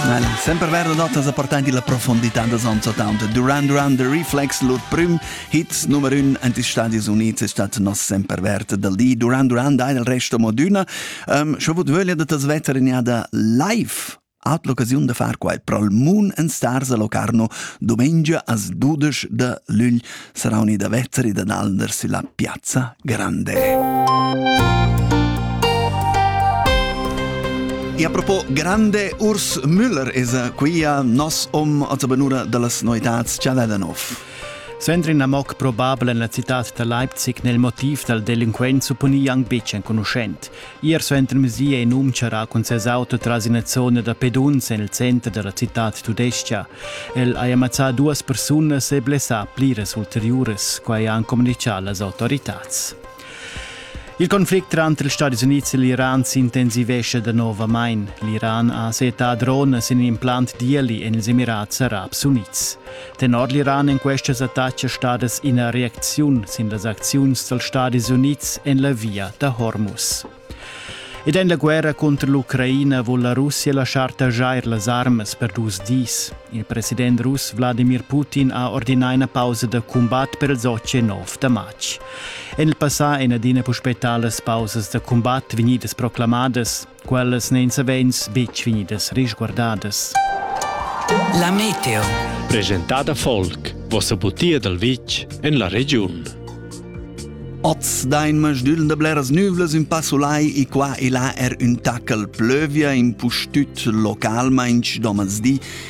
Well, sempre vero notas appartenti la profondità da Sonzatown. Durant Run the Reflex, lur prim hit numero 1 ant is Stadis Units è stato nos sempre vert del di. Durant Run da il resto moduna. Um, schon vut vöglia da tas vetter in jada live hat l'occasiun da far quai prol Moon and Stars a Locarno domenica as 12 de lügl sarà unida vezzeri da Nalnder sulla piazza Grande. E a propo grande Urs Müller es quia nos om a benura dallas noetats Cialadanov. Sempre in amoc probabile en la città da Leipzig nel motiv dal delinquent supponi Young Beach enconuschent. Ier suentermezdi è in um charrà cun ses auto tras ina zona da peduns en il center da la citad tudestga. El ha ammazzà duas persunas e blessà pliras ulteriuras, quai han communitgà las autoritads. Il conflict tranter ils Stati Unids e l'Iran s'intensivescha danovamain. L'Iran ha setà drones in implant d'Ieli en ils Emirats Arabs Unids. Tenor l'Iran en questas attacas stadas ina reacziun sin las acziuns dals Stadis Unids en la via da Hormuz. Ed en la guerra cunter l'Ucraina vul la Russia laschar taxar las armas per dus dis. Il president russ Wladimir Putin ha ordinà ina pausa da cumbat per il 19 da matg. En il passà èn adina puspè talas pausas da cumbat vegnidas proclamadas. Quellas n'èn savens betg vegnidas risguardadas. La meteo. Presentada folk, vossa butia dal vitg en la regiun. Oz dain masdügl da bleras nüvlas ün passulai e qua e là er ün taccal plövia in pustüt localmainch domans di